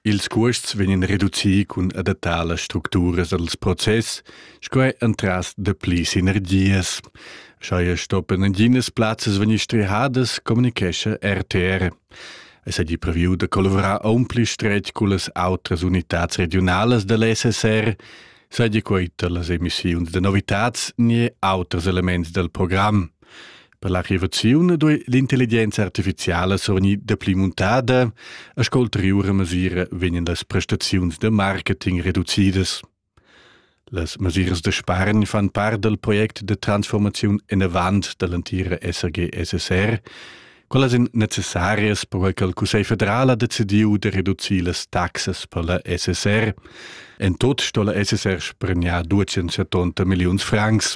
Ils cuosts vegnan reducii cun adattar las structuras dals process, sco er entras dapli sinergias. Scheia stoppen naginas plazzas vegnir strehadas, communicescha RTR. Es hagi previu da collavurar aunpli stretg cullas outras unitats regionalas dell SSR, seigi quei per las emissiuns da novitats ni auters elements dal program. Per la revoziun duei l'intelligenza artificiala survgnir dapli muntada e sco ulteriure mesira vegnan las prestaziuns de marketing reducidas. Las mesiras de spargn fan part del project de transformaziun inavant dall'antira SAG-SSR, quellas ein necessarias perquei che il Cussegl federal ha decidiu de reducir las taxas per la SSR. En tot sto la SSR spregnar 270 milliuns francs,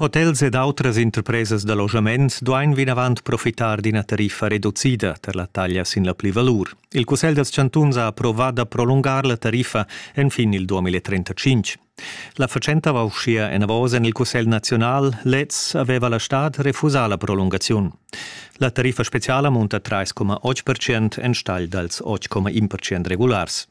Hotels ed autras interpresas da loschament duain vinavant profitar d'ina tariffa reducida per la taglia sin la plivalur. Il Cussegl dals chantuns ha approvà da prolungar la tariffa enfin il 2035. La fatschenta va uschia enavos en il Cussegl naziunal. Lez aveva la stad refusà la prolungaziun. La tariffa speziala munta 3,8% enstagl dals 8,1% regulars.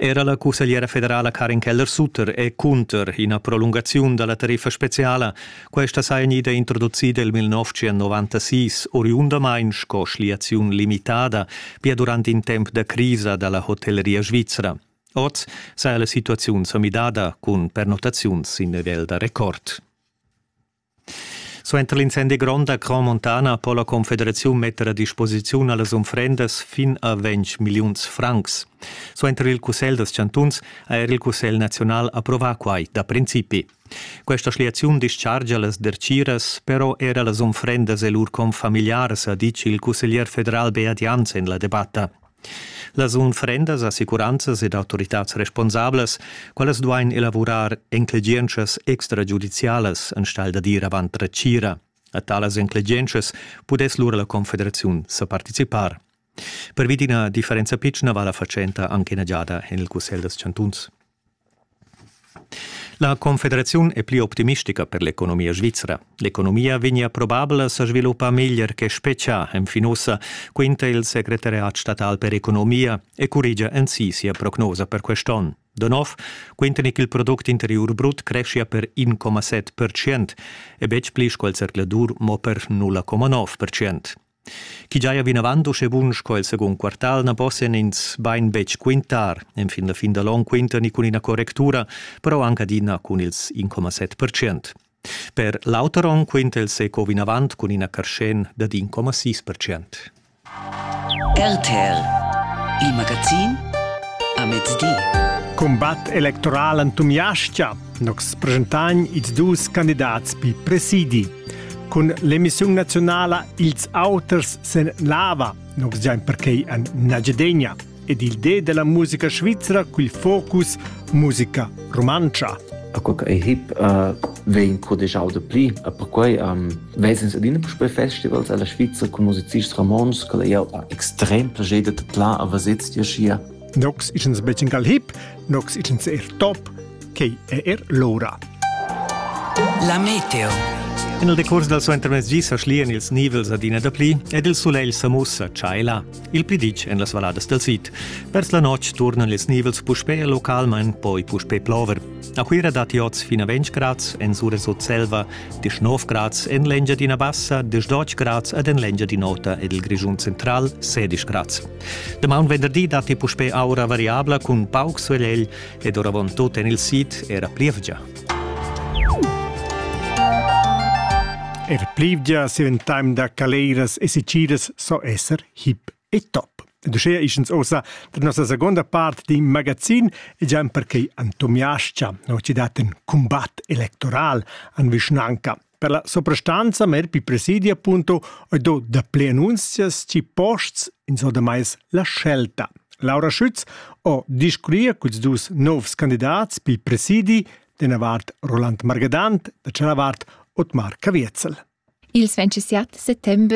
Era la cussegliera federala Karin Keller-Sutter è cunter ina prolungaziun da la tariffa speziala. Questa saja gnida introducida il 1996, oriundamain sco schliaziun limitada, pia durant in temp da crisa da la hotelleria svizra. Oz saja la situaziun sa midada cun pernottaziuns sin nivel da record. Suenter l'incendi grond a Cron Montana po la Confederaziun metter a disposiziun a las unfrendas fin a ventg milliuns francs. Suenter il Cussegl dals chantuns ha er il Cussegl naziunal approvà quai da principi. Questa schliaziun dischargia las dertgiras, però era las unfrendas e lur confamiliars, ha ditg il cusseglier federal Beat Jans en la debatta. Las unfrendas, assicuranzas ed autoritads responsablas, quellas duain elavurar enclegientschas extragiudizialas enstagl da dir avant la tgira. A talas enclegientschas pudess lura la Confederaziun sa participar. Pervi d'ina differenza pitschna va la fatschenta anche ina giada en il Cussegl dals chantuns. La confederaziun è pli optimistica per l'economia svizra. L'economia vegnia probabla sa sviluppar meglier che spetgà enfin ussa, quinta il segretariat statal per economia e currigia ensi sia prognosa per quest'onn. Da nov quintan che il product interiur brut creschia per 1,7% e betg pli sco il zercladur mo per 0,9%. Chi giaja vinavant uschè bun sco il secund quartal na possian ins bain betg quintar. Enfin la fin da l'on quintani cun ina correctura, però anc adina cun ils 1,7 percent. Per l'auter onn quinta il SECO vinavant cun ina carschen dad 1,6 percent. RTL, il magazin a mezdi. Cumbat electoral entumiascha Nox presentagn ils dus candidats pi presidi. Cun l'emissiun nazionala Ils auters sen lava, nox giain perquei an Nagedegna, ed il de della musica svizzera cul focus musica romantscha. A quel ei hip uh, vegn codegiau de pli. A perquei um, vesens adina puspei festivals alla Svizzera con musicists romans, che ei extrem plager de tla a vasez dir schia Nox ichens becin gal hip, nox ichens er top, quei è er l'ora. La meteo. En il decurs dal suo intermezzi sa schlian ils nivels adina da pli ed il sulegl sa mussa tschaila. Il plidic en las valladas del sid. Vers la notg turnan ils nivels puspè localmain, poi puspè plover. A Cuira datti oz fino a 20 grads, en sura sut Selva 19 grads, en l'Engiadina Bassa 18 grads ed en l'Engiadinota ed il Grischun Central 16 grads. Damaun venderdi datti puspè aura variabla cun pauc sulegl ed oravantut en il sid era plievgia. Er plievgia si in time da caleiras e siciras so esser hip e top. Ed uschea ischens ossa da nossa seconda part di magazin e già perché antomiascia, no ci dat un combat electoral an vischnanca. Per la soprastanza mer pi presidia punto e do dapli annunzias ci posts in so da mais la scelta. Laura Schütz o discuria culs dus novs candidats pi presidi dena vart Roland Margadant, da cella vart Otmar Caviezel. Il 27 settembre